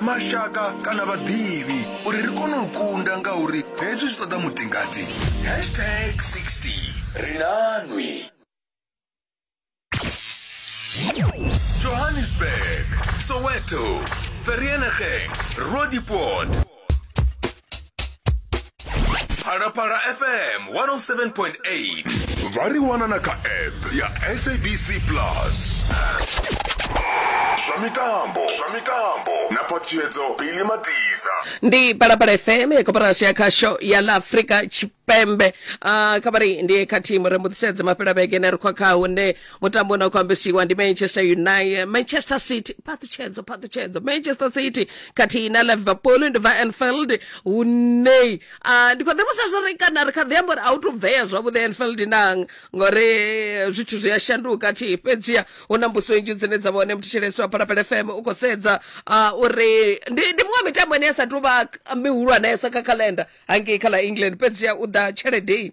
mashaka kana vhaḓivhi uri ri kone u kunda ngauri hezwi zwi ṱoḓa mutingati hashtag 60 ri nanwi johannesburg soweto vereeniging roodepoort phalaphala fm 107.8 vha ri wana na kha app ya sabc plus zwa mitambo zwa mitambo na ṱhalutshedzo bili matiza ndi palapala fm ya koporasi ya khasho ya la afrika tshipembe uh, kha vha ri ndi kha thimu ri mbuḓisedze mafhela vhege ne ri khwa kha hune mutambo na khou ambesiwa ndi manchester united manchester city phaṱhutshedzo phaṱhutshedzo manchester city khathihi na liverpool ndi bva anfield hune ah, ndi khou ḓivhusa zwo ri kana ri kha ḓi amba uri a u to bvea zwavhuḓi anfield nang ngori eh, zwithu zwi a shanduka thi fhedziha hu na mbuso nnzhi dzine dza vhone muthishelesi wa phalaphala fm u khou sedza ah, uri ndi ndi muṅwe wa mitambo ine ya sa tou vha mihulwanesa kha calendar hangei kha ḽa england fhedziha u ḓa tshelede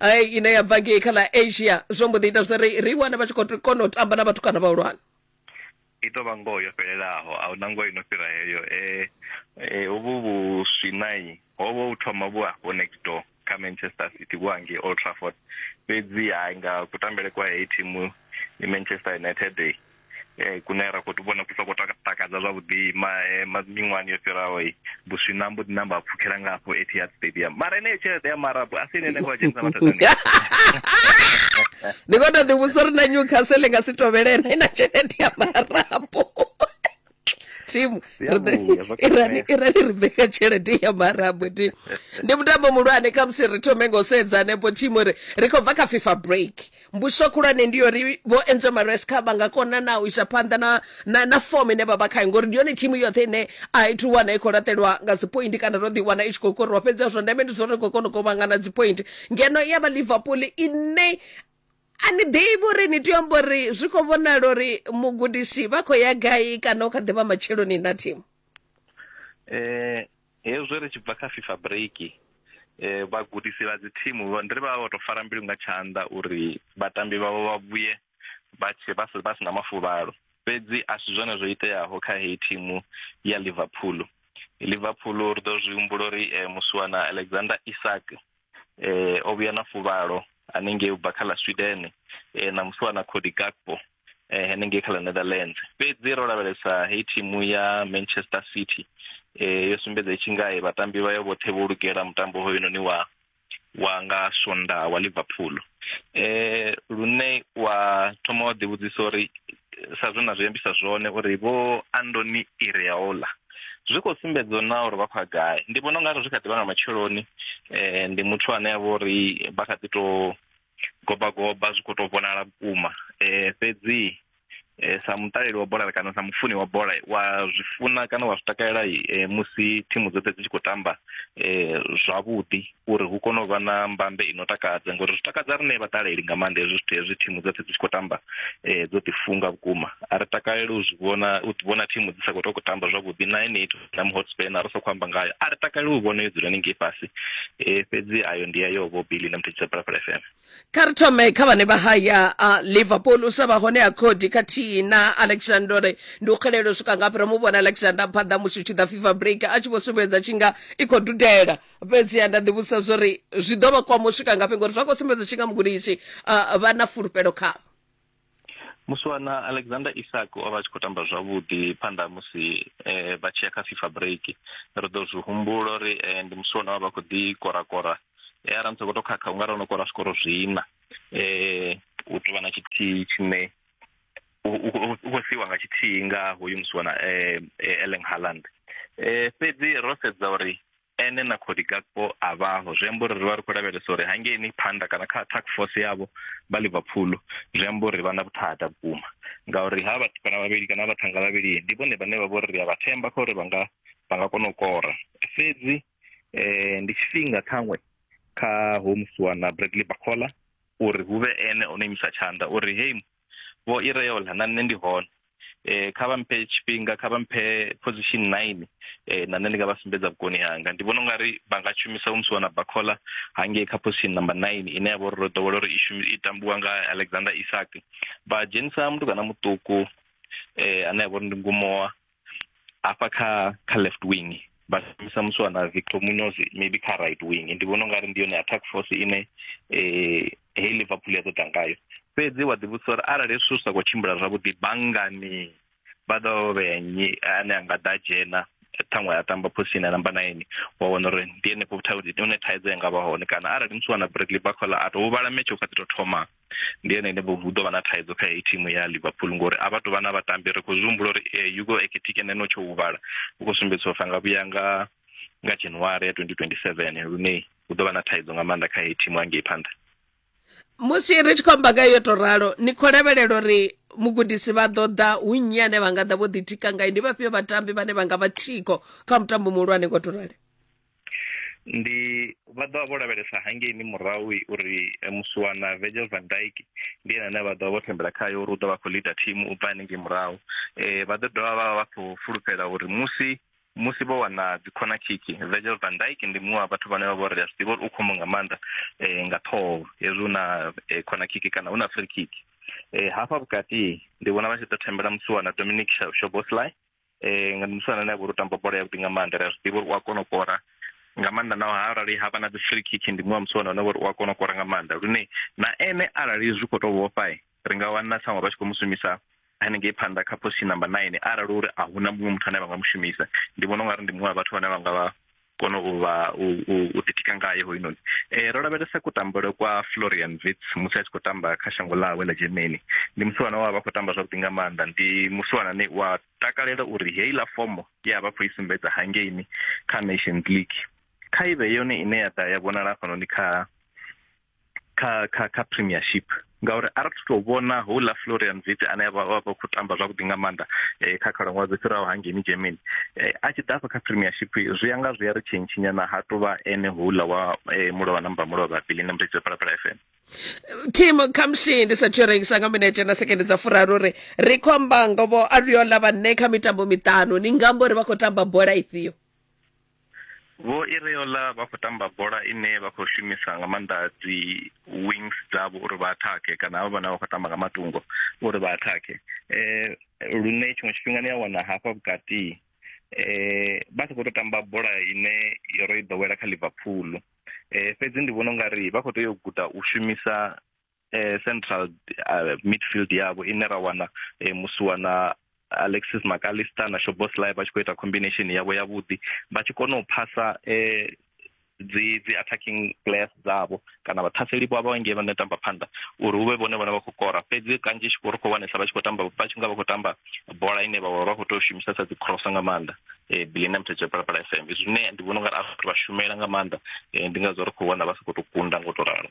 ai ine ya bva ngei kha ḽa asia zwo mbo ḓi ita zwa uri ri wane vha tshi khou kona u tamba na vhatukana vhahulwane i tou vha ngoho yo fhelelaho a huna ngoho ino fhira heyo um hovhu vhuswinai ho vha u thoma vhu afho next door kha manchester city vhu hangei old trafford fhedzi hai nga kutambele kwa heyi thimu i manchester united eh, kune ra khou vhona ku sa khou takadza zwavhuḓi eh, miṅwahani yo fhiraho buswina mbo ḓi namba a pfhukhela nga afho etihad stadium mara eneyo tshelede ya marabu a si ine ene khou dzhenisa mathadani ndi khou tou ḓivhusa uri na newcastle nga si tovhelena i na tshelede ya marabu thimu Ri a ri- vhuya, vha i rali- khou i rali ri ṋea tshelede ya marabwe thimu ndi mutambo muhulwane kha musi ri thome ngo sedza hanefho thimu ri ri khou bva kha fifa break mbuso khulwane ndi yori vho enzo maresca vha nga kona na u isa phanḓa na, na, na fom ine vha vha khayo ngori ndi yone thimu yoṱhe ine a i thu wana i khou laṱelwa nga dzipointi kana ro ḓiwana i tshi khou koriwa fhedzi zwa ndeme ndi zwo ri khou kona u kovhangana dzipointi ngeno ya vha liverpool ine A ni ḓivhi uri ni tea amba uri zwi khou vhonala uri mugudisi vha khou ya gai kana u kha ḓivha matsheloni na thimu eh hezwi ri tshi bva kha FIFA break eh vhagudisi vha dzi thimu ndi ri vha vha to fara mbilu nga tshanḓa uri vhatambi vhavho vha vhuye vha tshe vha si vha si na mafuvhalo fhedzi a si zwone zwo iteaho kha heyi thimu ya Liverpool Liverpool ri ḓo zwi humbula uri eh, musiwana Alexander Isak eh o vhuya na fuvhalo hanengei ubva kha ḽa Sweden eh na musi na Cody Gakpo eh hanengei kha ḽa Netherlands fhedzi ro lavhelesa hei thimu ya Manchester City eh yo sumbedza itshi ngae vhatambi vha yo vhoṱhe vho lugela mutambo hoyu noni wa wa nga Sonda wa Liverpool eh lune wa thoma wa ḓi vhudzisa uri sa zwe na zwi ambisa zwone uri vho andoni ireola zwi khou sumbedza na uri vha khou ya gai ndi vhona ungari zwi kha ḓi vha nga matsheloni eh, ndi muthu ane a vha uri vha kha ḓi to goba goba zwi khou to vhonala vhukuma eh, fhedzi eh, sa muṱaleli wa bola kana sa mufuni wa bola wa zwi funa kana wa zwi takalela eh, musi thimu dzoṱhe dzi tshi khou tamba eh, zwavhuḓi uri hu kone u vha na mbambe ino takadza ngori zwi takadza rine vhaṱaleli nga maanḓa hezwi zwithu hezwi thimu dzoṱhe dzi tshi khou tamba um dzo ḓifunga vhukuma a ri takaleli u zwi vhona u vhona thimu dzi sa khou to khou tamba zwavhuḓi na ene ithu na muhotspan a ri sa khou amba ngayo a ri takaleli u vhona yo dzula ni ngei fhasi um fhedzi ayo ndi ya yo vho billy na muthetsisa phalaphala fm kha ri thome kha vhane vha haya a liverpool u sa vha hone ha cody khathihi na alexandore ndi u xelelo swika ngafhi ro mu vhona alexander phanḓa musi u tshi ḓa fifa break a tshi vho sumbedza tshi nga i khou dudela fhedziha nda ḓivhudzisa zwo ri zwi ḓo vha kwama u swika ngafhi ngori zwa khou sumbedza tshi nga mugudisi uh, vha na fulufhelo khavho muswana alexander isak o vha a tshi khou tamba zwavhuḓi phanḓa musi um vha tshi ya kha fifa break ri ḓo zwi humbula uri um ndi musi wona wa vha khou ḓi korakora e ara musi khou tou khakha u nga ri ono kora zwikoro zwiina um u tou vha na tshithihi tshine u khou siiwa nga tshithihi nga hoyu musi wana um eleng harland um fhedzi ro sedza uri ene na khodi gakpo a vhaho zwi amba uri ri vha ri khou lavhelesa uri hangeini phanḓa kana kha attack force yavho vha liverpool zwi amba uri vha na vhuthada vhukuma ngauri ha vhathu kana vhavhili kana vhathanga vhavhili ndi vhone vhane vha vho ri ri a vha themba kha uri vha nga vha nga kona u kora fhedzi um ndi tshifhinga ṱhaṅwe kha homusiwa na bradley bacola uri hu vhe ene o no imisa tshanḓa uri hei vho ireola na nṋe ndi hone eh kha vha mphe tshifhinga kha vha mphe position 9 eh na nṋe ndi nga vha sumbedza vhukoni hanga ndi vhona ungari vha nga shumisa musi wana bakhola hangei kha position number 9 ine ya vha uri ro ḓowela uri i shumi i tambiwa nga Alexander Isak vha dzhenisa mutukana muṱuku eh ane ya vha uri ndi ngumowa hafha kha kha left wing vha shumisa muswa na victor munoz maybe kha right wing ndi vhona ungari ndi yone attack force ine eh hei liverpool ya ḓo ḓa ngayo fhedzi wa ḓivhudzisa uri arali hezwi zwithu zwi sa khou tshimbila zwavhuḓi banngani vha ḓo vha vhea nnyi ane a nga ḓa dzhena ṱhaṅwe a tamba phosini ya namba nine wa wana uri ndi henefho hune thaidzo ya nga vha hone kana arali musi wana bradley bacola a to huvhala metshe u kha ḓi to thoma ndi ene ene vho hu ḓo vha na thaidzo kha heyi thimu ya liverpool ngori a vha tou vha na vhatambi ri khou zwi humbula uri eh, yugo eketike neno tsho huvhala u khou sumbedziswa fa nga vhuya nga nga january ya 2027 lune hu ḓo vha na thaidzo nga maanḓa kha heyi thimu hangei phanḓa musi ri tshi khou amba nga yo to ralo ni khou lavhelela uri mugudisi vha ḓo ḓa hu nnyi ane vha nga ḓa vho ḓitika ngayo ndi vhafhio vhatambi vhane vha nga vha thiko kha mutambo muhulwane ngo to rali ndi vha ḓo vha vho lavhelesa hangeini murahu uri eh, musiwana virgil van dyke ndi ene ane vha ḓo vha vho thembela khayo uri u ḓo vha khou leader team u bva hanengei murahu um vha ḓo dovha vha vha khou fulufhela uri musi musi vho wana dzikhona khiki virgil van dyke ndi muṅwe wa vhathu vhane vha vho ri a zwi ḓivha uri u khombo nga maanḓa um nga ṱhoho hezwi hu na eh, khona khiki kana hu na free khiki um hafha vhukati ndi vhona vha tshi ḓo thembela musiwana dominic shoboslai um nga musana ane a vha uri u tamba bola yavhuḓi nga maanḓa ri a zwi ḓivha uri u a kona u kora nga maanḓa naho arali ha vha na dzi free kick ndi muṅwe wa musi wana uri u a kona u kora nga maanḓa lune na ene arali zwi khou tou vhofha ri nga wana tshaṅwe vha tshi khou mu shumisa hanengei phanḓa kha position number nine arali uri a huna muṅwe muthu ane vha nga mu shumisa ndi vhona ungari ndi muṅwe wa vhathu vhane vha nga vha kona u vha u ḓitika ngayo hoyunoni um ro lavhelesa kutambele kwa florian vits musi a tshi khou tamba kha shango ḽawe ḽa germany ndi musiwana wa vha khou tamba zwavhuḓi nga maanḓa ndi musiwana ne wa takalela uri heiḽa fomo ye a vha khou i sumbedza hangeini kha nations league kha ive yone ine ya ḓa ya vhonala hafhanoni kha kha kha kha premiership ngauri a ri to vhona houḽa florian vit ane vha vha khou tamba zwavhuḓi nga maanḓa um kha khalaṅwaha dzo fhiraho hangeni germany um a tshi ḓafha kha premiership zwi ya nga zwi ya ri tshentshinyana ha to vha ene houḽa wa um mulovha namba mulovha bili na muthetshi phalaphala f m tim khamusi ndi sathu rengisa nga minete na sekende dza furaru ri ri khou amba ngovo ariola vhanne kha mitambo miṱanu ni nga amba uri vha khou tamba bola ifhio Vho Ireola vha khou tamba bola ine vha khou shumisa nga maanḓa dzi wings dzavho uri vha athakhe kana havha vhana vha khou tamba nga matungo uri vha athakhe eh lune tshiṅwe tshifhinga ni a wana hafha vhukati eh vha sa khou tou tamba bola ine yo ro i ḓowela kha Liverpool eh fhedzi ndi vhona ungari vha khou tea u guda u shumisa eh, central uh, midfield yavo ine ra wana eh, musi wana alexis macalister na shoboslai vha tshi khou ita combination yavo yavhuḓi vha tshi kona u phasa eh, dzi dzi attacking players dzavho kana vhathaseli vho vha ngei vhane tamba phanḓa uri hu vhe vhone vhone vha khou kora fhedzi kanzhi tshi khou ri khou wanesa vha tshi khou tamba vha tshi nga vha khou tamba bola ine vha vha khou tou shumisesa dzi cross nga maanḓa eh bilina mthetshe phalaphala fm zwine ndi vhona ungari a vhathu vha shumela nga maanḓa eh, ndi ngazwo ri khou wana vha sa khou tou kunda ngo to ralo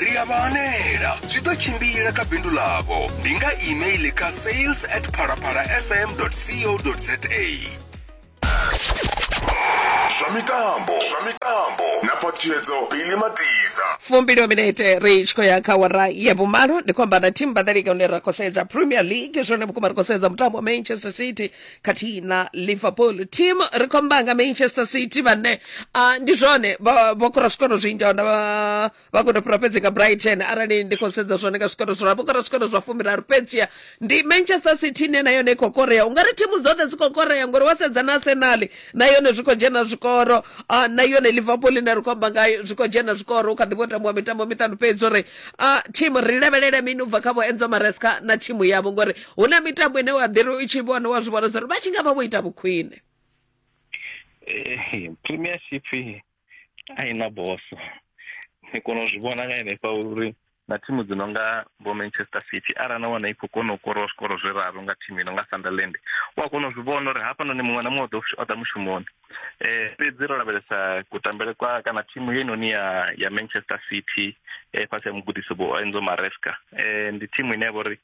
ri a vha hanela zwi ḓo tshimbila kha bindu ḽavho ndi nga email kha sales at phalaphalafm co za zwa mitambo zwa mitambo na phathiedzo bili matiza fumbili wa minete ri tshi khou ya kha wara ya vhumalo ndi khou amba na team badalika hune ra khou sedza premier league zwone vhukuma ri khou sedza mutambo wa manchester city khathihi na liverpool team ri khou amba nga manchester city vhane ah, ndi zwone vha vha kora zwikoro zwinzhi ahuna vha vha khou tou fhira fhedzi nga brighton arali ndi khou sedza zwone nga zwikoro zwiraru vho kora zwikoro zwa fumiraru fhedzia ndi manchester city ine na yone i khou korea ungari thimu dzoṱhe dzi khou korea ngori wa sedza na arsenal na yone zwi khou dzhena zwikoro ah, na yone liverpool ine ri khou amba ngayo zwi khou dzhena zwikoro u kha ḓi vho tambiwa mitambo miṱanu fhedzi uri ah, thimu ri lavhelele mini u bva kha vho enzo maresca na thimu yavho ngori hu na mitambo ine wa ḓi ri i tshi vhona wa zwi vhona zwa uri vha tshi nga vha vho ita vhukhwine eh, premiership a i na boso ni kona u zwi vhona nga henefha uri na thimu dzi no nga vho manchester city arali na wana i khou kona u kora zwikoro zwiraru nga thimu ino nga sunderland u a kona u zwi vhona uri hafhanoni muṅwe na muṅwe o ḓa mushumoni eh fhedzi ro lavhelesa kutambele kwa kana thimu ye noni ya ya Manchester City eh fhasi ya mugudisi vho Enzo Maresca eh ndi thimu ine ya vhori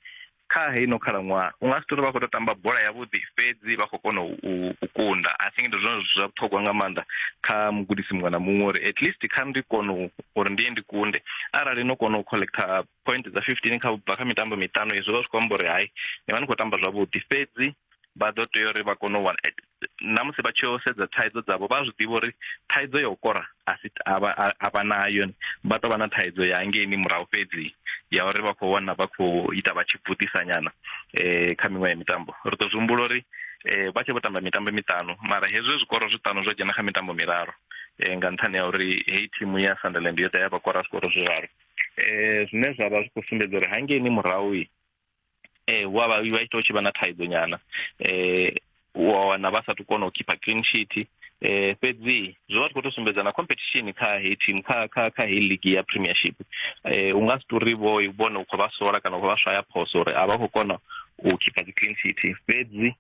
kha heino khalaṅwaha u nga si tori vha khou to tamba bola yavhuḓi fhedzi vha khou kona u kunda i think ndi zwone zwa vhuṱhogwa nga maanḓa kha mugudisi muṅwe na muṅwe uri at least kha ndi kone uri ndiye ndi kunde arali no kona u collector point dza fifteen kha bva kha mitambo miṱanu izwo vha zwi khou amba uri hai ni vha ni khou tamba zwavhuḓi fhedzi vha ḓo tea uri vha kone u wana na musi vha tshi yo sedza thaidzo dzavho vha zwi ḓivha uri thaidzo ya u kora a si a vha nayo vha tou vha na thaidzo ya hangeini murahu fhedzi ya uri vha khou wana vha khou ita vha tshi bvutisa nyana um kha miṅwe ya mitambo ri ḓo zwi humbula uri um vha tshi vho tamba mitambo miṱanu mara hezwi zwikoro zwiṱanu zwo dzhena kha mitambo miraru um nga nṱhani ya uri heyi thimu ya sunderland yo ḓa ya vha kora zwikoro zwiraru um zwine zwa vha zwi khou sumbedza uri hangeini murahu eh wa vha vha ita u tshi vha na thaidzo nyana eh wa wana vha sa tu kona u khipha clean sheet eh fhedzi zwi vha tshi khou to sumbedza na competition kha heyi team kha kha kha heyi league ya premiership eh u nga si tori vho i vhone u khou vha sola kana u khou vha swaya phoso uri a vha khou kona u khipha dzi clean sheet fhedzi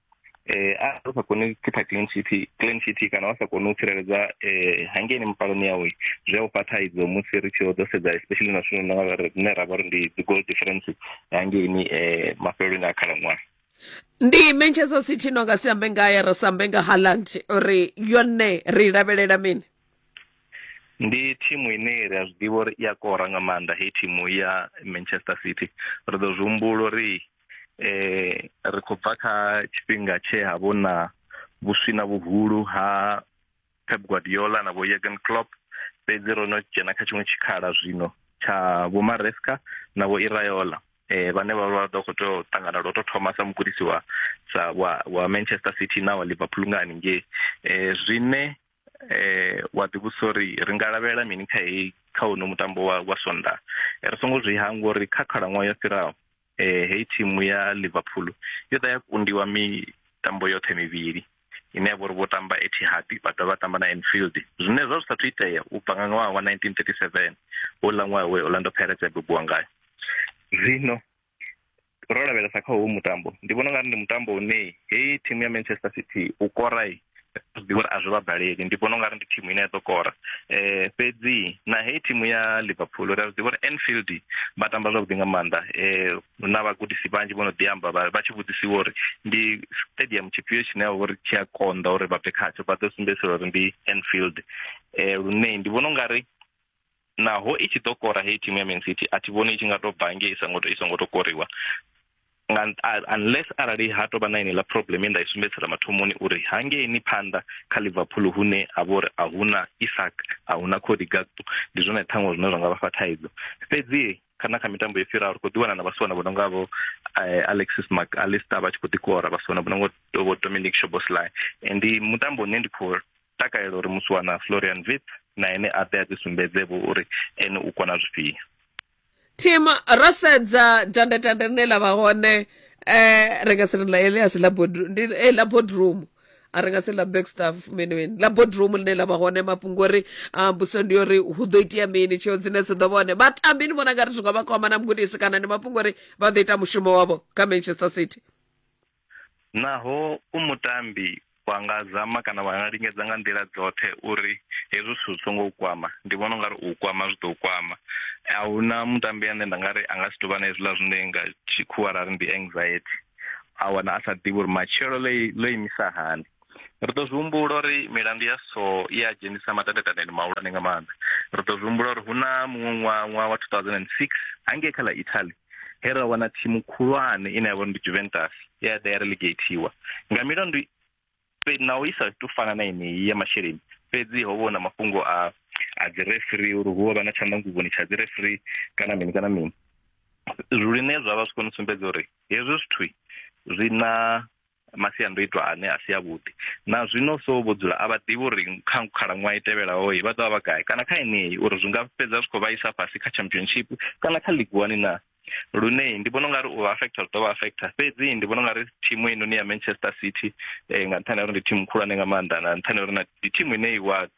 eh a sa koni u khipha clean sheet clean sheet kana vha sa koni u tsireledza eh hangeini mipaloni yawe zwi a u fha thaidzo musi ri tshi ḓo sedza especially na zwino nga rine ra vha uri ndi dzi goal difference hangeini eh mafheleloni a khalaṅwaha ndi manchester city no nga si ambe ngaye ri sa ambe nga haland uri yone ri lavhelela mini ndi thimu ine ri a zwi ḓivha uri i a kora nga maanḓa heyi thimu ya manchester city ri ḓo zwi humbula uri eh ri khou bva kha tshifhinga tshe ha vho na vhuswina vhuhulu ha Pep Guardiola na vho Jurgen Klopp fhedzi ro no dzhena kha tshiṅwe tshikhala zwino tsha vho Maresca na vho Iraola eh vhane vha vha ḓo khou tea u ṱangana lwo tou thoma sa mugudisi wa sa wa wa Manchester City na wa Liverpool nga haningei eh zwine eh wa ḓivhusa uri ri nga lavhelela mini kha heyi kha uno mutambo wa wa Sondag ri songo zwi hangwa uri kha khalaṅwaha yo fhiraho eh, heyi thimu ya liverpool yo ḓa ya kundiwa mitambo yoṱhe mivhili ine ya vha uri vho tamba etihad vha dovha vha tamba na enfield zwine zwa zwi sathu itea u bva nga ṅwaha wa 1937 houḽa ṅwaha we orlando pirates ya bebiwa ngayo zwino ro lavhelesa kha howu mutambo ndi vhona ungari ndi mutambo une heyi thimu ya manchester city u korai ndi vhona a zwi vha baleli ndi vhona ungari ndi thimu ine ya ḓo kora eh fhedzi na heyi thimu ya liverpool ri a zwi vhona enfield vha tamba zwavhuḓi nga maanḓa eh na vhagudisi vhanzhi vho no ḓi amba vha tshi vhudzisiwa uri ndi stadium tshifhio tshine ya uri tshi a konḓa uri vha bve khatsho vha ḓo sumbedzisela uri ndi enfield eh lune ndi vhona ungari naho i tshi ḓo kora heyi thimu ya man city a thi vhoni i tshi nga to bva ngei i songo i songo to koriwa nga unless arali ha tovha na iniḽa problem ye nda i sumbedzisela mathomoni uri hangeini phanḓa kha liverpool hune ha vha uri a huna isak a huna cody gakpo ndi zwone ṱhaṅwe zwine zwa nga vha fha thaidzo fhedzi kana kha mitambo yo fhiraho ri khou ḓiwana na vhasiwana vho no nga vho eh, alexis mac alista vha tshi khou ḓikora vhasiwana vho no nga vho dominic shoboslai ndi mutambo une ndi khou takalela uri musi wana florian vip na ene a ḓe a ḓi sumbedze vho uri ene u kona zwifhio tim ro sedza dandetande rine la vha hone um ri nga si ri ḽa elias ḽa eh, boardroom a ri nga si ḽa backstaff mini mini ḽa boardroom ḽine ḽa vha hone mafhungo uri ah, mbuso ndi yo ri hu ḓo itea mini tsheo dzine dzi ḓo vha hone vhatambi ni vhona nga ri zwi nga vha kwama na mugudisi kana ndi mafhungo uri vha ḓo ita mushumo wavho kha manchester city Naho u mutambi vha nga zama kana vha nga lingedza nga nḓila dzoṱhe uri hezwi zwithu zwi songo u kwama ndi vhona ungari u kwama zwi ḓo kwama a hu na mutambi ane nda nga ri a nga si tovha na hezwiḽa zwine nga tshikhuwa ra ri ndi anxiety a wana a sa ḓivhi uri matshelo ḽo ḽo imisa hani ri ḓo zwi humbula uri milandu ya so i a dzhenisa matandataneni mahulwane nga maanḓa ri ḓo zwi humbula uri hu na muṅwe ṅwaha ṅwaha wa 2006 hangei kha ḽa italy he ra wana thimu khulwane ine ya vha ndi juventus ye ya ḓa ya relegateiwa nga milandu na u isa to fana na yeneyi ya masheleni fhedzi ho vhona mafhungo a a dzi referee uri hu vha na tshandanguvhoni tsha dzi referee kana mini kana mini zwine zwa vha zwi kone u sumbedza uri hezwi zwithu zwi na masiandoitwa ane a si avhuḓi na zwino so vho dzula a vha ḓivhi uri kha khalaṅwaha i tevhelaho vha ḓovha vha gai kana kha yeneyi uri zwi nga fhedza zwi khou vha isa fhasi kha championship kana kha league one na lune ndi vhona ungari u affecta zwi ḓovha affecta fhedzi ndi vhona ungari thimu inoni ya manchester city eh, nga nṱhani ya uri ndi thimu khulwane nga maanḓa na nṱhani ya uri ndi thimu ine iwa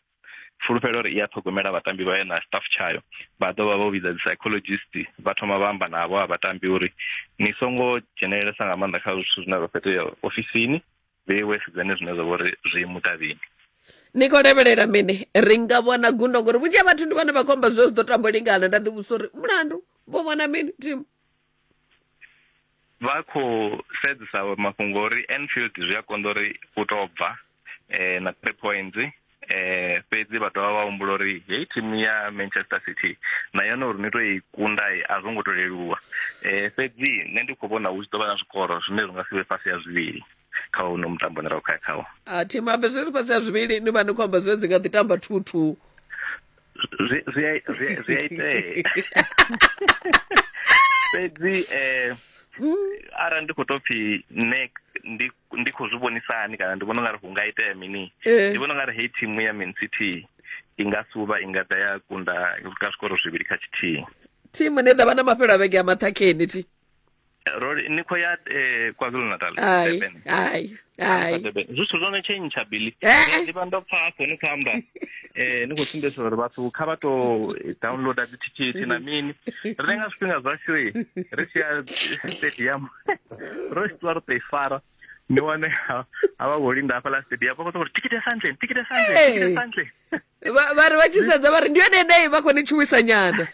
fulufhelo uri i a ṱhogomela vhatambi vhayo na staff tshayo vha ḓo vha vho vhidza dzi psychologist vha thoma vha amba navho a vhatambi uri ni songo dzhenelelesa nga maanḓa kha zwithu zwine zwa fhetea ofisini vheiwe sedzane zwine zwa vhori zwi mutavhini ni khou lavhelela mini ri nga vhona gundo ngori vhunzhi ha vhathu ndi vhane vha khou amba zwe zwi ḓo tambo lingana nda ḓivhusa uri mulandu vho vhona mini thimu vha khou sedzesa mafhungo uri Enfield zwi a konḓa uri u tou bva eh na 3 points eh fhedzi vha dovha vha humbula uri heyi thimu ya Manchester City na yone uri ni to i kunda a zwo ngo to leluwa eh fhedzi nṋe ndi khou vhona hu tshi ḓo vha na zwikoro zwine zwi nga si vhe fhasi ya zwivhili kha uno mutambo ne ra khou ya khawo a thimu ambe zwi ri fhasi ya zwivhili ni vha ni khou amba zwi dzi nga ḓi tamba thuthu zwi zwi zwi zwi ite fhedzi eh ara ndi kho to phi ne ndi ndi kho zwi vhonisani kana ndi vhona ngari hu nga itea mini eh. ndi vhona ngari hey team ya Man City inga suba inga ḓa ya kunda ka zwikoro zwivhili kha tshithihi thimu ne ḓa vha na mafhelo a vhege a maṱhakheni thi ro ni khou ya eh, kwazulu natal ai Durban. ai ai Durban. zwithu zwo no tshentsha bili Eh. ndi vha ndo pfa afho ni khou amba eh ni khou sumbedzisa uri vhathu kha vha tou downloada dzithikhithi na mini ri lenga zwifhinga zwashu i ri tshi ya stadium ro tshi ṱuwa ri tou i fara ni wane ha- havha vho linda hafhaḽa stadium vha khou tou uri tikiti ya santleni tikiti ya santleni tikiti ya santleni Vha- vhari vha tshi sedza vhari ndi yone ine vha khou ni tshuwisa nyana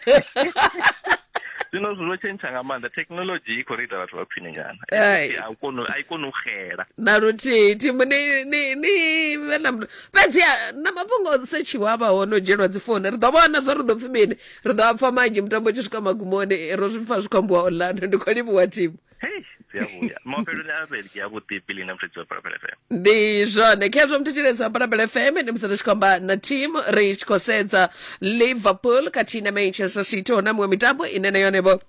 zwino zwo tshentsha nga maanḓa thekhinolodzhi i khou ri ita vhathu vha khwine nyana Ai. a u koni a i koni u xela na luthihi thimu ni ni ni vhe na muta- fhedzi ha, na mafhungo o setshiwa a vha hone o dzhielwa dzi founu ri ḓo vhona zwo ri ḓo pfi mini ri ḓo a pfa manzhi mutambo u tshi swika magumoni ro zwi pfa zwi khou ambiwa online ndi khou livhuwa thimu hei dzi a vhuya mafheloni a vhege avhuḓi bili na mfredzi wa balabela fm ndi zwone khezwo muthetshelezi wa balabela fm ndi musi ri tshi khou amba na team ri tshi khou sedza liverpool khathihi na manchester city hu na miṅwe mitambo ine na yone vho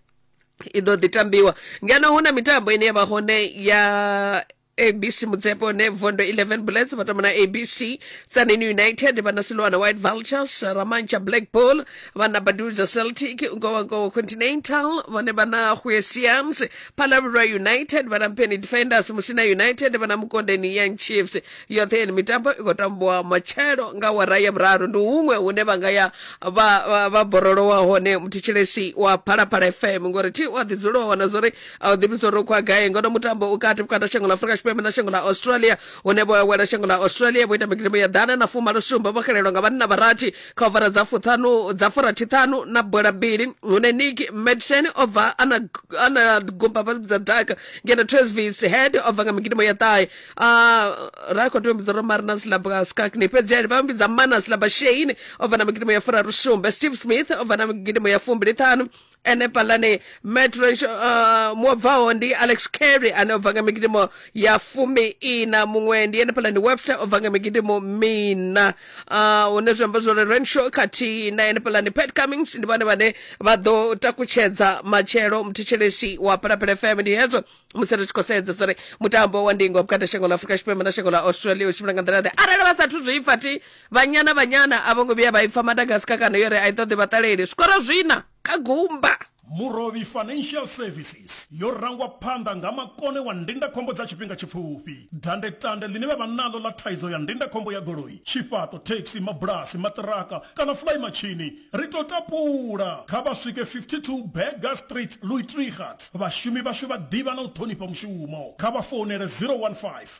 i ḓo ḓi tambiwa ngeno hu na mitambo ine ya vha hone ya abc motsepe ne vondo 11 bullets ba tomona abc tsaneni united ba na silwana white vultures ramantsha black bull ba na baduza celtic nkowankowa continental ba ne ba na huesiams palabra united ba na mpeni defenders musina united ba na mukondeni young chiefs yoṱhe yeni mitambo i khou tambiwa matshelo nga wara ya vhuraru ndi huṅwe hune vha nga ya vha- vha vha borolowa hone muthetshelesi wa phalaphala fm ngori thi wa ḓidzulo wa wana zwori a u ḓivhi zwo rokwa gai ngono mutambo u kati vhukati ha shango ḽa afurika tshipembe na shango ḽa australia une vho awela shango ḽa australia vho ita migidibo ya ḓana na fumalo sumbe vho xelelwa nga vhanna vharathi kha ovara dza fuṱhanu dza furathiṱhanu na bola mbili hune nick madsen o bva ana ana gumba vha dza daka ngeno tresvis head o bva nga migidibo ya ṱahe a ra khou tea u mbidza romarina silaba skakni fhedzi ali vha mbidza mana silaba shein o bva na migidibo ya furaru sumbe steve smith o bva na migidibo ya fumbili ṱhanu ene phalani metro uh, mwo bvaho ndi alex carry ane o bva nga migidimo ya fumi ina muṅwe ndi ene phalani webster o bva nga migidimo mina uh, hune zwi amba zwori renshaw khathihi na ene phalani pat cummings ndi vhone vhane vha ḓo takutshedza matshelo muthetshelesi wa phalaphala fm ndi hezwo musi ri tshi khou sedza zwori mutambo wa ndingo vhukati ha shango ḽa afurika tshipembe na shango ḽa australia u tshimbila nga nḓila ḓe arali vha sathu zwi pfa thi vhanyana vhanyana a vho ngo vhuya vha ipfa madagaska kana yo ri a i ṱoḓi vhaṱaleli zwikoro zwina kha gumba Murovhi Financial Services yo rangwa phanḓa nga makone wa ndindakhombo dza tshifhinga tshipfufhi. Dandetande ḽine vha vha naḽo ḽa thaidzo ya ndindakhombo ya goloi, tshifhaṱo, thekhisi, mabulasi, maṱiraka kana fulaimatshini, ri tou tapula. Kha vha swike 52 Burger Street, Louis Trichardt. Vhashumi vhashu vha ḓivha na u ṱhonifha mushumo. Kha vha founele 015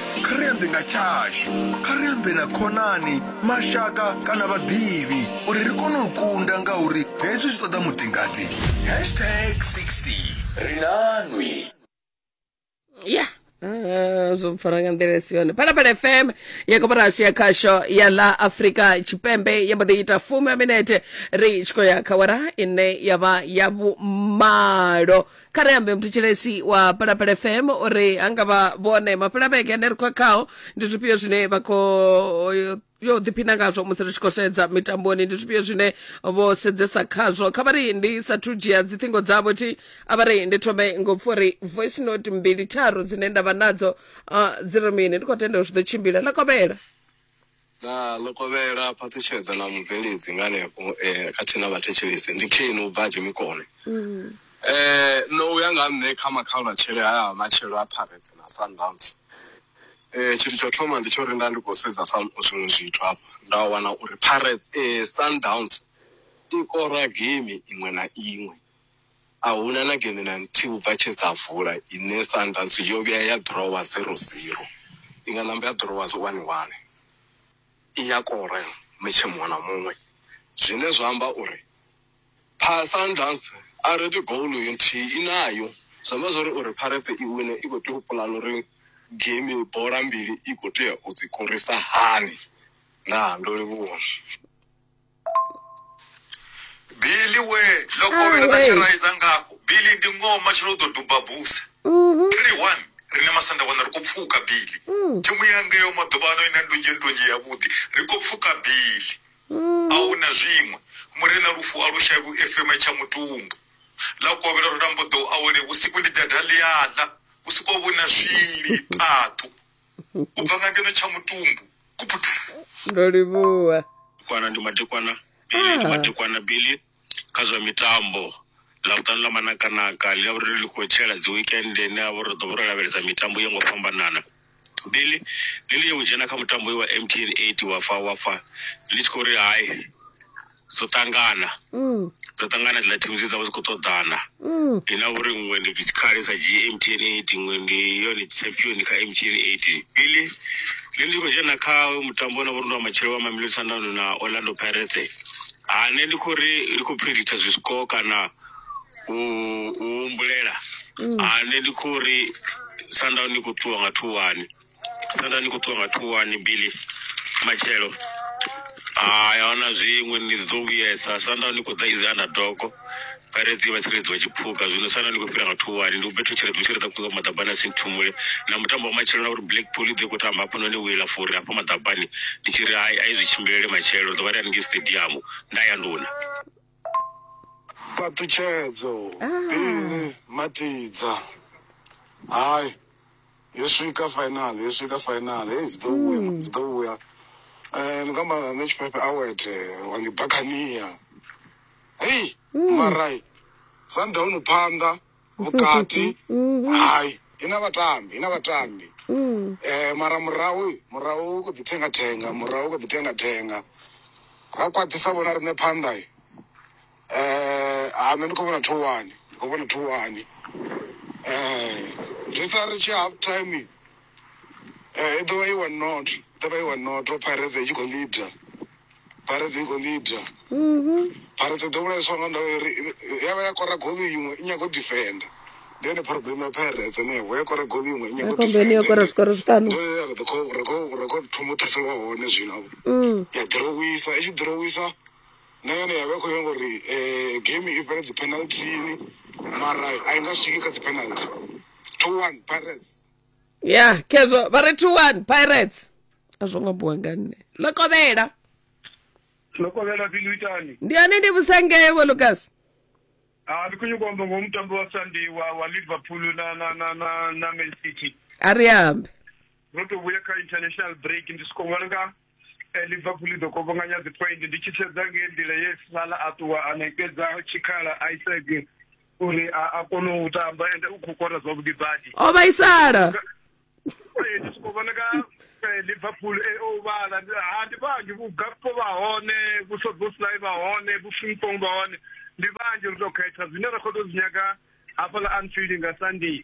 Kha ri ambe nga tshashu. Kha ri ambe na khonani, mashaka kana vhaḓivhi uri ri kone u kunda ngauri hezwi zwi ṱoḓa mutingati. Hashtag 60 ri na nwi. ya ah, zwo mpfara nga nḓila i si yone phalaphala fm ya koporasi ya khasho ya ḽa afrika tshipembe ya mbo ḓi ita fumi ya minete ri tshi khou ya kha wara ine ya vha ya vhumalo kha ri ambe mthetshelesi wa palapala fm uri ha nga vha vhone mapelavhege ane ri khou khao ndi zwifhio zwine vha khou yo ḓiphina ngazwo musi ri tshi khou sedza mitamboni ndi zwifhio zwine vho sedzesa khazwo kha vha ri ndi sathu dzhia dziṱhingo dzavho thi a vha ri ndi thome ngo pfa uri voice note mbili tharu dzine nda vha nadzo ah, dzi ri mini ndi khou tenda uri zwi ḓo tshimbila ḽa kovhela Na ḽo kovhela phaṱhutshedza na mubveledzi nga henefho e khathihi na vhathetshelesi ndi Cain u bva a Dzhemikone. E no u ya nga ha nṋe kha makhaulwatshele haya a matshelo a Pirates na Sundowns, e tshithu tsho thoma ndi tsho ri nda ndi kho sedza sa zwiṅwe zwithu hafha nda wana uri Pirates, e Sundowns i kora geimi iṅwe na iṅwe. A hu na na gene na nthihi u bva tshe dza vula. Ine Sundowns yo vhuya ya ḓirowa zero zero, i nga namba ya ḓirowa zwo wani wani. I ya kora metshe muṅwe na muṅwe zwine zwa amba uri pha Sundowns a ri ri goal yo nthihi i nayo. Zwi amba zwo ri uri Pirates i wine i khou tea u puḽana uri game bola mbili i khou tea u dzi korisa hani. Ndaa, ndo livhuwa. bili we lokovhela na tshiraiza ngafho bili ndi ngoho matshelo u ḓo duba buse three one rine masanda wana ri khou pfuka bili thimu yangeyo maḓuvha ano ina ndunzhi ndunzhi yavhuḓi ri khou pfuka bili a hu na zwiṅwe murena lufu a lu shavhi u efema tsha mutumbu ḽa kovhela ro tambo ḓo awele vhusiku ndi dada ḽiaḽa vhusiku ho vhu na swili phaṱhu u bva nga ngeno tsha mutumbu ndo livhuwa kwana ndi madekwana bili ndi madekwana bili kha zwa mitambo ḽa vhuṱanu ḽa manakanaka ḽi ḽa vhuri ḽi khou tshela dzi weekend ine ya vha uri ri ḓo vha ro lavhelesa mitambo yo ngo fhambanana bili ḽi ḽi yo u dzhena kha mutambo wa mtn eight wa fa wa fa ḽi tshi khou ri hai dzo ṱangana mm. dzo ṱangana dzila thimu dzi dza vha dzi khou ṱoḓana mm. ndi na uri nngwe ndi tshikhale sa dzhie m t n eight nngwe ndi yone champion kha m t n eight bili ndi ndi khou dzhena kha mutambo na vhori ndi wa matshelo wa mamilo sandano na orlando pirate hane ndi khou ri ndi khou predicta zwisiko kana u humbulela hane mm. ndi khou ri sandano ndi khou ṱuwa nga thuwani Nda ni khou ṱuwa nga thuwani Billy matshelo hai ahuna zwiṅwe ni ḓo vhuyesa sanda ni khou ḓa izi underdog pirates vha tsireledzi wa tshiphuga zwino sanda ni khou fhira nga thuwani ndi ubethu tshiredzo tshiredzo kunga maḓabani a sinthumule na mutambo wa matshelo na uri blackpool i ḓo khou tamba hafha noni wila fori hafha maḓabani ndi tshi ri hai a i zwi tshimbilele matshelo ri ḓo vha ri haningei stadium nda ya nduna fhaṱutshedzo bini matidza hai Yo swika final, yo swika final. Hey, dzi ḓo vhuya, dzi ḓo vhuya. Eh, ndi khou amba na nṋe tshifhefe awet wa ndi bakhania. Hey, mara Sundown phanḓa vhukati. Hai, ina vhatambi, ina vhatambi. Eh, mara murahu, murahu u khou ḓi thenga thenga, murahu u khou ḓi thenga thenga. Ra khwaṱhisa vhona riṋe phanḓa. Eh, ha nṋe ndi khou vhona thowani ndi khou vhona thowani eh ri sa ri tshi half time eh i ḓovha i one not i ḓovha i one not pirates i tshi khou leader pirates i khou leader pirates i ḓo vhulaiswa nga ndavha uri ya vha ya kora goli iṅwe i nyago defender ndi yone problem ya pirates henefho ya kora goli iṅwe i nyago akombeni yo kora zwikoro zwiṱanu ri khou ri khou ri khou thoma u ṱhaselwa hone zwino ya ḓirowisa i tshi ḓirowisa na yone ya vha i khou nyanga uri um game i fhele dzi penalthini mara a i nga swiki kha dzi penalty two one pirates ya khezwo vha ri two one pirates a zwo ngo buwa nga nne ḽo kovhela ḽo kovhela pili itani ndi yone ndi vhusangewe lucas a ah, ndi khou nyuka amba ngoho mutambi wa sandi wa wa liverpool na na na na na man city a ri ambe ro to vhuya kha international break ndi soko ṅwana nga eh, liverpool i ḓo kovhonganya dzi point ndi tshi sedza nge nḓila ye sala a ṱuwa a ṋekedza tshikhala isaac uri a kone u tamba ende u khou kora zwavhuḓi badi o vhaisala eh, ndi soko vhona ka eh, liverpool o vhala ha ndi vhanzhi vhugakpo vha hone vhusoboslai vha hone vhufrimpong vha hone ndi vhanzhi ri tou khetha zwine ra khou tou zwi nyaga hafhaḽa anfield nga sunday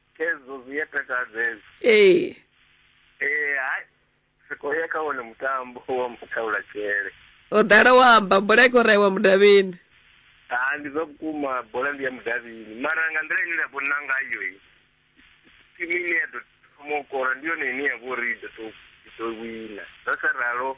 Khezwo zwi a takadza hezwo. ee Eh hai ri khou ya kha wone mutambo wa mathaula tshele. o ḓala wa amba bola i khou raiwa mudavhini Ha ndi zwa vhukuma bola ndi ya mudavhini mara nga nḓila ine nda vhona ngayo i timu ine ya ḓo thoma u kora ndi yone ine ya vha uri i ḓo tou i ḓo wina. Zwa sa ralo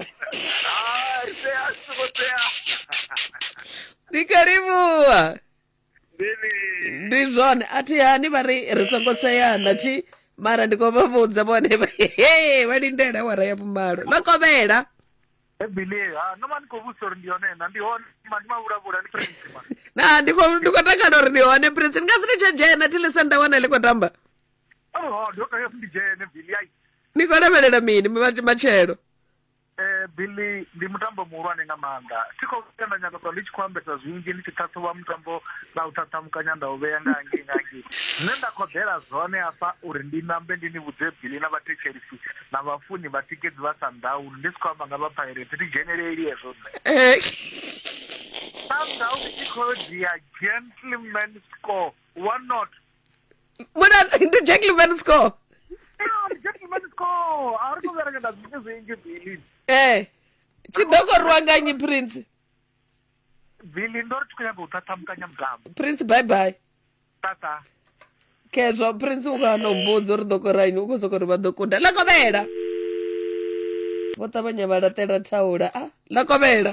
Ah, ise asikutea. ndi karibuwa Ndini. ndi zwone a thi hani vha ri ri songo seyana thi mara ndi khou vha vhudza vhone vha he vha lindela awara ya vhumalo vha kovhela Ebili, ah, no man ko vutsa uri ndi yone na ndi hone man ma vula vula ni prince man. na ndi khou ndi khou takala uri ndi hone prince ndi nga si ni tsha dzhena thi lisa nda wana ḽi khou tamba oh ndo tea ndi dzhene billy ai ni khou lavhelela mini ma- matshelo eh billy ndi mutambo muhulwane nga maanḓa thi khou vhuya nda nyaka ṱwa ndi tshi khou ambesa zwinzhi ndi tshi ṱhaṱhuvha mutambo na u ṱhaṱhamukanya nda u vhea nga hangei nga hangei zwine nda khoḓela zwone hafha uri ndi nambe ndi ni vhudze billy na vhathetshelisi na vhafuni vhatikedzi vha sandauni ndi si khou amba nga vha pirate thi dzheneleli hezwo nṋe Eh, Sundowns i khou dzhia gentleman score one not mu na ndi gentleman score Ah, ndi gentleman score a ri to vhuya ra ita zwithu zwinzhi bili eh tshi ḓo koriwa nga nyi prince bili ndo ri tshi khou nyaga u ṱhaṱhamukanya mutambo prince bye bye tata khezwa prince u kana u mbudza uri ḓo koraini u khou soko ri vha ḓo kunda ḽa kovhela vho ṱavhanya vha laṱela thaula a ḽa kovhela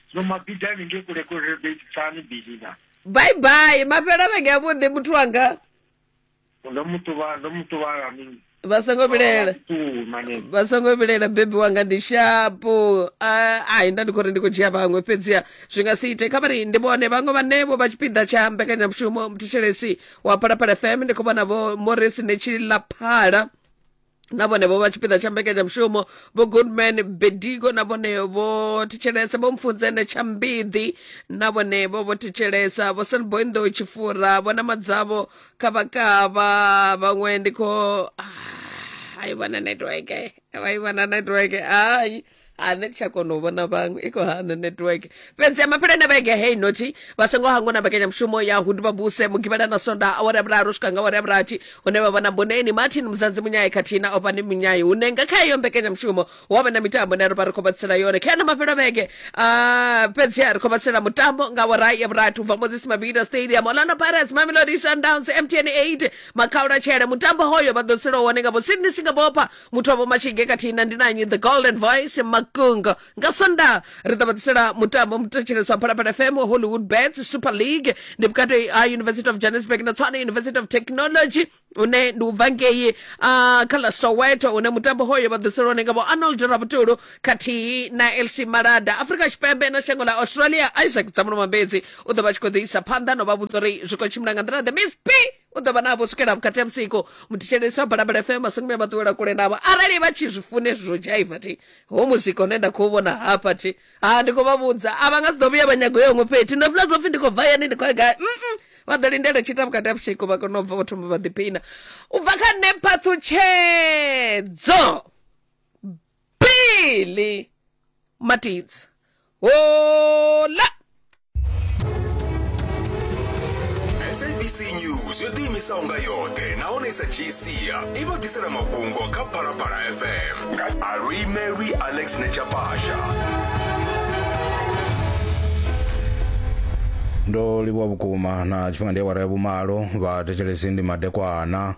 no mabida ni ngei kule kule betsani bili na bye bye mafhela vhege ya vhuḓi muthu wanga ndo mutuba ndo mutuba la mini vha songo vhilela tu mane vha songo vhilela bebi wanga ndi shapo Ah, ai nda ndi khou ri ndi khou dzhia vhaṅwe fhedziha zwi nga si ite kha vhari ndi vhone vhaṅwe vhanevho vha tshipiḓa tsha mbekanyamushumo mthetshelesi wa phalaphala fm ndi khou vhona vho morris netshi laphala na vhone vho vha tshipiḓa tsha mbekanyamushumo vho goodman bedigo na vhone vho thetshelesa vho mfunzene tsha mbiḓi na vhone vho vho thetshelesa vho sanboindo tshifura vho na madzavho kavhakavha vhaṅwe ndi kho ah, hayi vhana network hayi vhana network hayi ha nṋe ndi tsha kona u vhona vhaṅwe i khou hana network fhedzi ya maphelene vhege hei nothi vha songo hangwa na mbekanyamushumo ya hundi vhabuse mugivhela na sonda awara ya vhuraru swika nga awara ya vhurathi hune vha vhona boneni martin muzanzi munyayi khathihi na ofani munyayi hune nga kha iyo mbekanyamushumo hu avha na mitambo ne ri vha ri khou vha tsela yone kha yana mafhelo vhege ah, fhedzi ha ri khou vha tsela mutambo nga awara ya vhurathi u bva moses mabida stadium orlando pirates mamelodi sundowns mtn 8 makhaula tshele mutambo hoyo vha ḓo tsela wone nga vho sydney singabopha muthu wa vhomatshige khathihi na ndinanyi the golden voice makungo nga sonda ri ḓo vha ḓisela mutambo muthetsheleswa phalaphala fm wa hollywood bets super league ndi vhukati ha university of johannesburg na tswana university of technology une ndi ubva ngei ah, kha ḽa soweto une mutambo hoyo vha ḓisela one nga vho arnold rabutulu khathihi na lc malada afrika tshipembe na shango ḽa australia isaac dzamuno mambedzi u ḓo vha tshi khou ḓisa phanḓa no vha vhudza uri zwi khou tshimbila nga nḓila the miss p u ḓo vha navho swikela vhukati ha vhusiku muthetshelesi wa balabala fm masongomi a vha ṱuwela kule navho arali vha tshi zwi funa hezwi zwo dzhaiva thi ho muzika une nda khou vhona hafha thi ha ndi khou vha vhudza a vha nga si ḓo vhuya vha nyago yo huṅwe fhethu ndo funa zwo pfhi ndi khou bva yani ndi khou ya gai mm vha ḓo lindela tshita vhukati ha vhusiku vha kona u bva vho thoma vha ḓiphina u bva kha nṋe phaṱhutshedzo bili matidzi Hola! sabc news yo ḓiimisaho nga yoṱhe nahone i sa dzhii sia i vha ḓisela mafhungo kha phalaphala fm nga alwi mary alex nechapasha ndo livhuwa vhukuma na tshifhinga ndi awara ya vhumalo vha thetshelesi ndi madekwana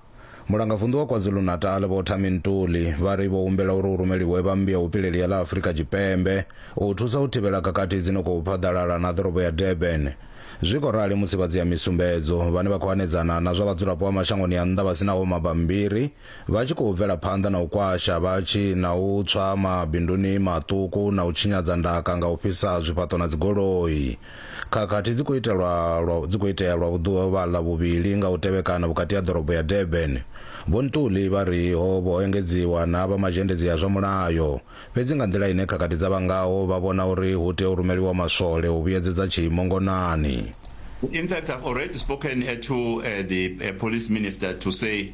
Mulangavunḓu wa KwaZulu-Natal Vho Thami Ntuli vha ri vho humbela uri hu rumeliwe vha mmbi ya vhupileli ya ḽa Afrika Tshipembe u thusa u thivhela khakhathi dzi no khou phaḓalala na ḓorobo ya Durban. Zwi khou rali musi vha dziyamisumbedzo vhane vha khou hanedzana na zwa vhadzulapo vha mashangoni a nnḓa vha si naho mabammbiri vha tshi khou bvela phanḓa na u kwasha vhatshi na u tswa mabinduni maṱuku na u tshinyadza ndaka nga u fhisa zwifhaṱo na dzigoloi. Khakhathi dzi khou itelwa lwa dzi khou itea lwa vhuḓuvha-ḽa vhuvhili nga u tevhekana vhukati ha ḓorobo ya Durban. Vho Ntuli vha ri ho vho ho engedziwa na vha mazhendedzi a zwa mulayo, fhedzi nga nḓila ine khakhathi dza vha ngaho vha vhona uri hu tea u rumeliwa maswole u vhuyedzedza tshiimo ngonani. In fact, I've already spoken to the Police Minister to say.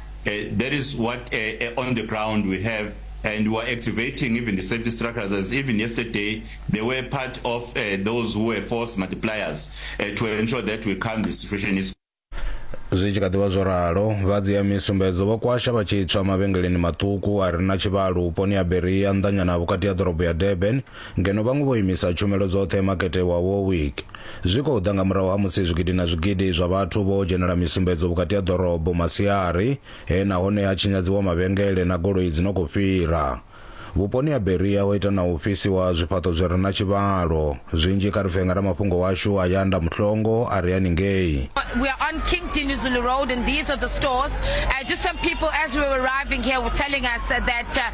Uh, that is what uh, uh, on the ground we have and we are activating even the safety structures as even yesterday they were part of uh, those who were force multipliers uh, to ensure that we calm the situation is zwi tshi kha ḓivha zwo ralo vha dzia misumbedzo vho kwasha vha tshi tswa mavhengeleni maṱuku a re na tshivhalo vhuponi ha beria nnḓanyana vhukati ha ḓorobo ya durban Ngeno vhaṅwe vho imisa tshumelo dzoṱhe Makete wa Warwick. Zwi khou ḓa nga murahu ha musi zwigidi na zwigidi zwa vhathu vho dzhenela misumbedzo vhukati ha ḓorobo masiari he nahone ha tshinyadziwa mavhengele na goloi dzi no khou fhira. Vhuponi ha Berea ho ita na u fhisiwa zwifhaṱo zwi re na tshivhalo. Zwinzhi kha ri pfe nga ramafhungo washu Ayanda Mhlongo a re haningei. We are on King Dinuzulu Road and these are the stores. Uh, just some people as we were arriving here were telling us that uh,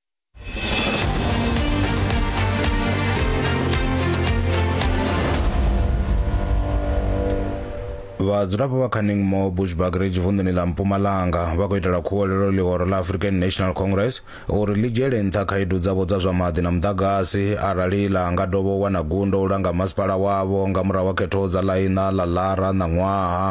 vhadzulapo vha canningmore bushbuck ridge vunḓuni ḽa mpumalanga vha khou itela khuwelelo ḽihoro ḽa african national congress uri ḽi dzhiele nṱha khaedu dzavho dza zwa maḓi na muḓagasi arali ḽa nga dovha u wana gundo u langa masipala wavho nga murahu wa khetho dza ḽaiṋa ḽa ḽara ṋaṅwaha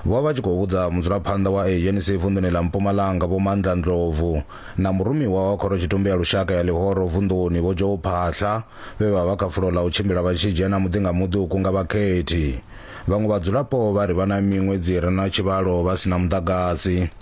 Vho vha vha tshi khou vhudza mudzulaphanḓa wa ANC vunḓuni ḽa Mpumalanga Vho Mandla Ndlovu na murumiwa wa Khorotshitumbe ya Lushaka ya Ḽihoro vunḓuni Vho Joe Phaahla vhe vha vha kha fulo ḽa u tshimbila vha tshi dzhena muḓi nga muḓi u kunga vhakhethi. Vhaṅwe vhadzulapo vha ri vha na miṅwedzi i re na tshivhalo vha si na muḓagasi.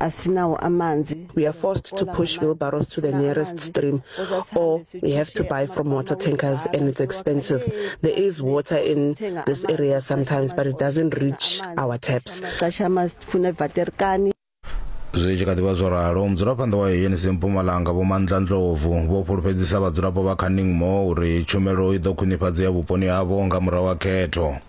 asinawo amanzi we are forced to push wheelbarrows to the nearest stream or we have to buy from water tankers and it's expensive there is water in this area sometimes but it doesn't reach our taps xaxama sifuna ivaterkani zwi tshi kha ḓivha zwo ralo mudzulaphanḓa wa unc mpumalanga vho mandla ndlovu vho fhulufhedzisa vhadzulapo vha kha ningmo uri tshumelo i ḓo khwinifhadzea vhuponi havho nga murahu ha khetho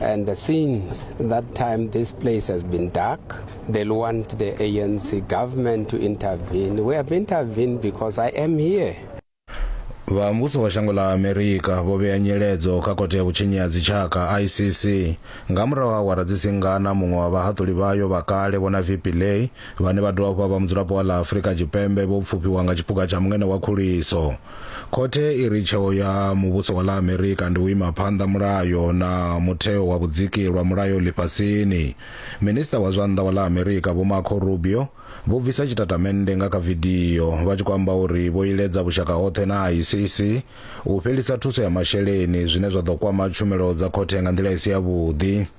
And since that time, this place has been dark. They want the ANC government to intervene. We have intervened because I am here. vha muvhuso wa shango ḽa amerika vho vhea nyeledzo kha khothe ya vhutshinyi ha dzitshaka icc nga murahu ha awara dzi singana muṅwe wa vhahaṱuli vhayo vha kale vhona vp lay vhane vha dovha vha vha mudzulapo wa ḽa Afrika Tshipembe vho pfufhiwa nga tshipuka tsha mungene wa khuliso. Khothe i ri tsheo ya muvhuso wa ḽa Amerika ndi u ima phanḓa mulayo na mutheo wa vhudziki lwa mulayo ḽifhasini. Minisiṱa wa zwa nnḓa wa ḽa Amerika Vho Marco Rubio vho bvisa tshitatamennde nga kha vidio vha tshi khou amba uri vho iledza vhushaka hoṱhe na ICC u fhelisa thuso ya masheleni zwine zwa ḓo kwama tshumelo dza khothe nga nḓila i si yavhuḓi.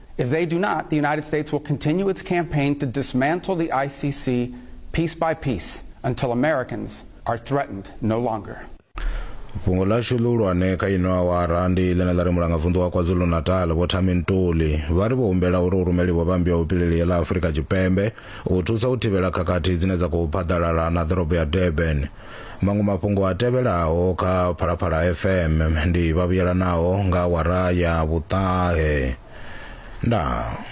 if they do not the united states will continue its campaign to dismantle the i c c piece by piece until americans are threatened no longer fhungo ḽashu ḽihulwane kha ino awara ndi ḽine ḽa ri mulangavunḓu wa kwazulu-natal vho thami ntuli vha ri vho humbela uri hu rumeliwe vhambi ya vhupileli ya ḽa afurika tshipembe u thusa u thivhela khakhathi dzine dza khou phaḓalala na ḓorobo ya durban Maṅwe mafhungo a tevhelaho kha Phalaphala FM ndi vhavhuyelanaho nga awara ya vhuṱahe. Ndaa.